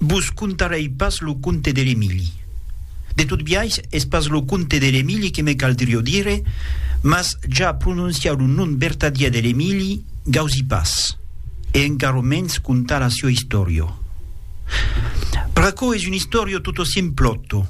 Vos contarèi pas lo conte de l'Emili. De tot biais, es pas lo conte de l'Emili que me caldrió dire, mas ja prononciar lo nom vertadièr de l'Emili, gausi pas, e encara mens contar la sió istòria. Pr'aquò es un istòria totossimplòto.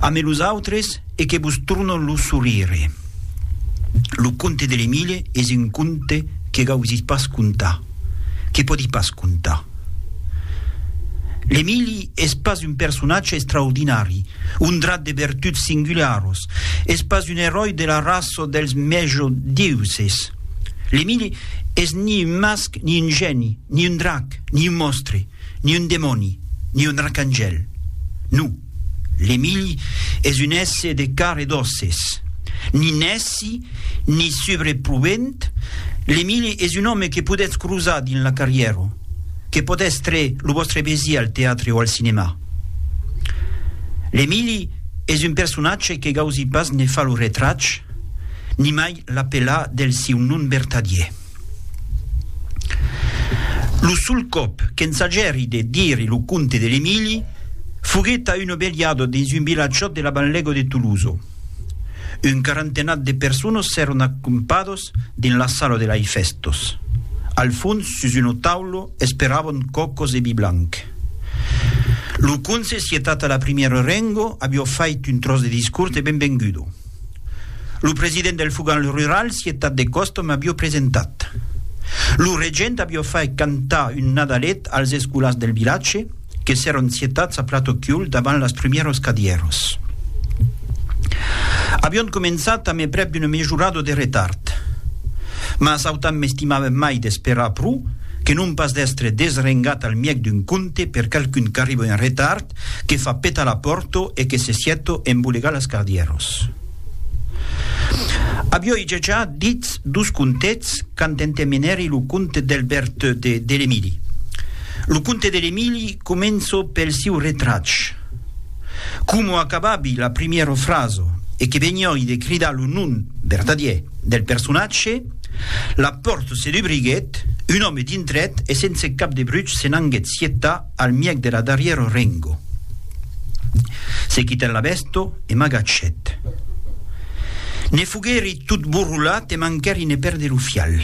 Ame los autres e que vos tornon lo sorire. Lo conte de l'Emile es un conte que gausís pas contar, que pòdi pas contar. L'Emili es pas un personatge extraordinari, ondrat de vertuts singularos, es pas un eròi de la raça dels mèjodiuses. L'Emili es ni un masc, ni un gèni, ni un drac, ni un mòstre, ni un demòni, ni un arcangèl. Non. L'Emilh es un èsse de car e d'òsses. Ni nèci, ni subreprobent, l'Emilh es un òme que podètz crosar dins la carrièra, que pòt èstre lo vòstre vesí al teatre o al cinemà. L'Emilh es un personatge que gausi pas ne far lo retrach, nimai l'apelar del siu nom vertadier. Lo sol còp qu'ensajèri de dire lo conte de l'Emili foguèt a una velhada dins un vilatjòt de la banlèga de Tolosa. Un quarantenat de personas s'èron acampadas dins la sala de lai fèstas. Al fons, sus una taula, esperavan còcas e vi blanc. Lo conse, sietata la primièra renga, aviá fait un tròç de discors de benvenguda. Lo president del Fogall Rural, Cietat de Còstom, avió presentat. Lo regent avió fait cantar un Nadalet als escolars del vilatge, que s'èron cietats a plat o chiul davant las prumieros cadièros. Avión començat a mai prèp d'una mejorado de retard. Mas autant m'estimava mai d'esperar pro que non pas d'èstre desrengat al mièg d'un conte per qualqu'un qu'arriba en retard, que fa petar la pòrto e que se sieto embolegar las cardieros. Avioi dejà ditz dos contets quand entemenèri lo conte d'Elbert de Delemili. Lo conte de Lemili començo pel siu retrach. Como acababi la primièro fraso e que venioi de cridar lo nom vertadier del personatge, la pòrto se dubriguèt, un òme dintrèt e sense cap de bruch se n'anguèt sietar Al mièg de la darrièra rengo. Se quitèt la vèsto e m'agachèt. Ne foguèri tot borrolat e manquèri ne pèrder lo fial.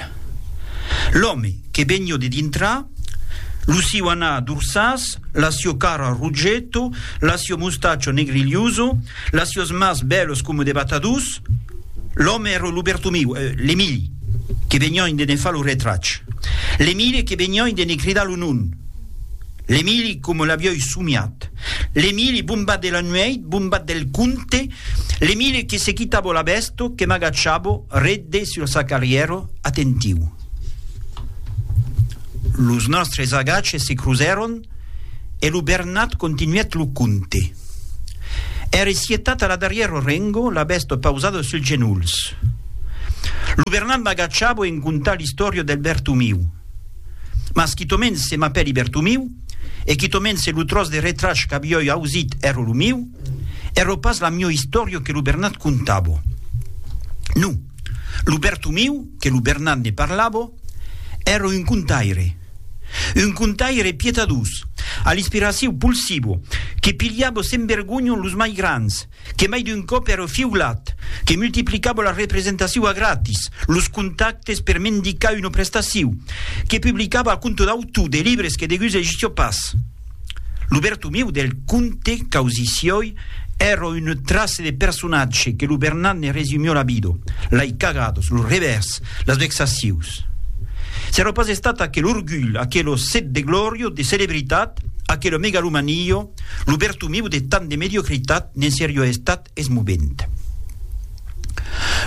L'òme, que vegnió de dintrar, lo siu anar dorsàs, la sió cara rogeto, la sió mostachio negrilhoso, las siós mas bèlos coma de batadors, l'òme èra lo Bertomiu, l'Emili, que vegniòin de ne far lo retrach. L'Emili que vegniòin de ne cridar lo nom. L'Emili, coma l'avioi somiat. L'Emili, bombat de la nueit, bombat del conte, l'Emili que se quitavo la vèsto, que m'agachavo, redde sur sa carrièro, atentiu. Los nòstres agaches se crusèron e lo Bernat continuèt lo conte. Ère sietat a la darrièro rengo, la vèsto pausada suls genolhs. Lo Bernat m'agachavo en contar l'istòria del Bertomiu. Mas quitomens se m'apèli Bertomiu, e quitomens se lo tròç de retrach qu'avioi ausit èro lo miu, èro pas la miò istòrio que lo Bernat contavo. Non, lo Bertomiu, que lo Bernat ne parlavo, èro un contaire. Un contaire pietadós, a l'inspiraciu pulsivo, que pilhavo sen vergonhon los mai grands, que mai d'un còp ère o fiulat, que multiplicava la representaciu a gratis, los contactes per mendicar una prestaciu, que publicava a compte d'autu de libres que degus egissia pas. Lo Bertomiu del conte Causicioi ère un trace de personatge que lo Bernat ne resumió la vida, lei cagadas, los revèrs, las vexacius. S'ère pas estat aquel orgulh, aquelo set de glòria, de celebritat, aquela megalomania, Lo bertomiu de tant de mediocritat ne'n serió estat eth movent.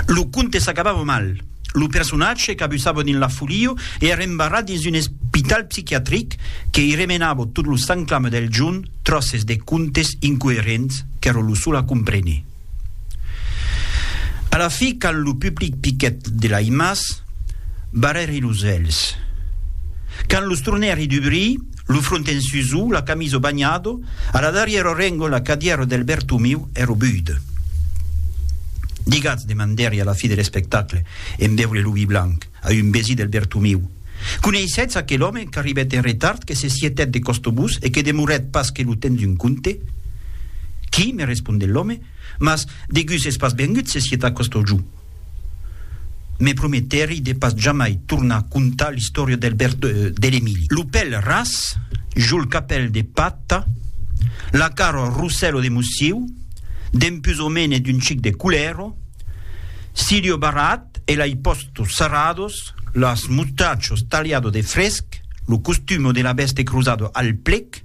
Lo conte s'acabava mal. Lo personatge cabussava dins la folia e èra embarrat dins un espital psiquiatric que i remenava tot lo sanclam del jorn tròces de contes incoerents qu'èra lo sol a compréner. A la fi, quand lo public piquèt de l'aimas, barrèri los hèlhs. Quand los tornèri dubrir, Lo front en susau, la camiso banhado, a la darrièro rengo la cadièro del Bertomiu ero buid. Digatz, demandèri a la fi de l'espectacle, en veure lo vi blanc, a un vesí del Bertomiu, coneissetz aquel òme qu'arribèt en retard, que se sietèt de costobús e que demorèt pas que lo temps d'un conte? Qui? me responde l'òme, mas, degús es pas vengut se sietar costogíu. Me prometèri de pas jamai tornar contar l'istòria del berd de l'Emili. Lo pèl ras, jol capèl de pata, la cara rossèlo de mossiu, dempús o mene d'un chic de culèro, siriu barrat e lai pòstos sarrados, las mustachos taliado de fresc, lo costumo de la vèste crosado al plec,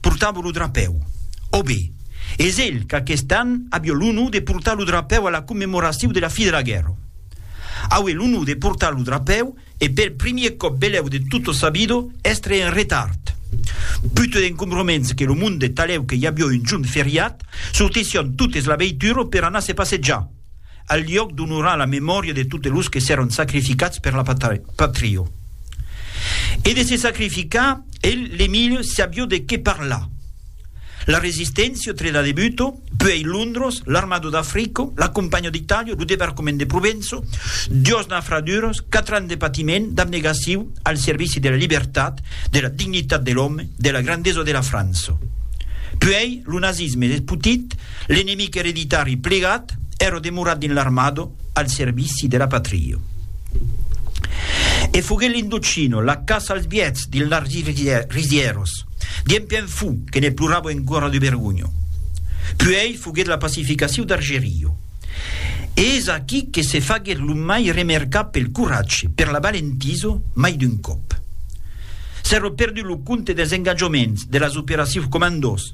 Portavo lo drapèu. Ò be, es elh qu'aquest an avió l'onor de portar lo drapèu a la commemoracíu de la fi de la guèrra. Aué l'onor de portar lo drapèu e pel primier còp belèu de tota sa vida èstre en retard. Putut encombroments que lo monde talèu que i avió un jorn feriat, sortissión totes la veitura per anar se passejar. al liòc d'onorar la memòria de totes los que s'èron sacrificats per la patria. E de se sacrificar, el, l'Emilio, sabió de qué parlar. La Resisténcia, tre da debuto, puèi Londros, l'Armado d'Africo, la Companha d'Itàlia, lo Debarcament de Provenço, duas nafraduras, quatre ans de patiment, d'abnegaciu, al servici de la libertat, de la dignitat de l'òme, de la grandesa de la França. Puèi lo nazisme despotit, L'enemic ereditari plegat èra demorat dins l'armada al servici de la patria. E foguèt l'Indochino, la caça als biets dins las risièras, dien pièn fou que ne plorava encora de vergonha. Puèi foguèt la pacificaciu d'Argerio. E es aquí que se faguèt lo mai remercar pel coratge, per la valentisa, mai d'un còp. S'èra perdut lo compte dels engatjaments, de las operacius comandós,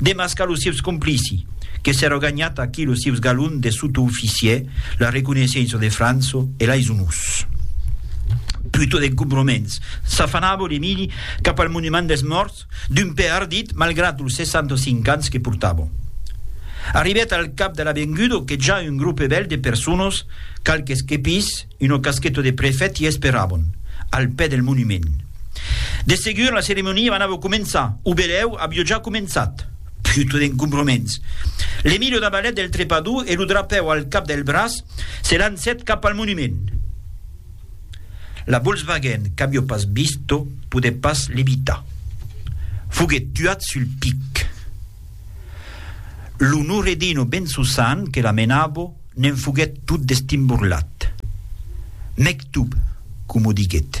Demascar los sieus complici, que s'èra ganhat aquí los sieus galons de sotooficier, la reconeissença de Franço e lais onors. Plutot d'encombroments, s'afanava l'Emili cap al monument dels mòrts, d'un pè ardit malgrat los 65 ans que portava. Arribèt al cap de l'avenguda que ja un grope bèl de personas, qualques quepis, Una casqueta de prefèt i esperabon, al pè del monument. De segur, la ceremonia anava començar, o belèu aviá ja començat. Puta d'encombraments! L'Emilio da balèt del trepador e lo drapèu al cap del braç, se lancèt cap al monument. La Volkswagen qu'aviá pas vist, podèt pas l'evitar. Foguèt tuat sul pic. Lo Nouredino ben Susan que la menabo ne'n foguèt tot destimborlat. Mectub, coma o diguèt.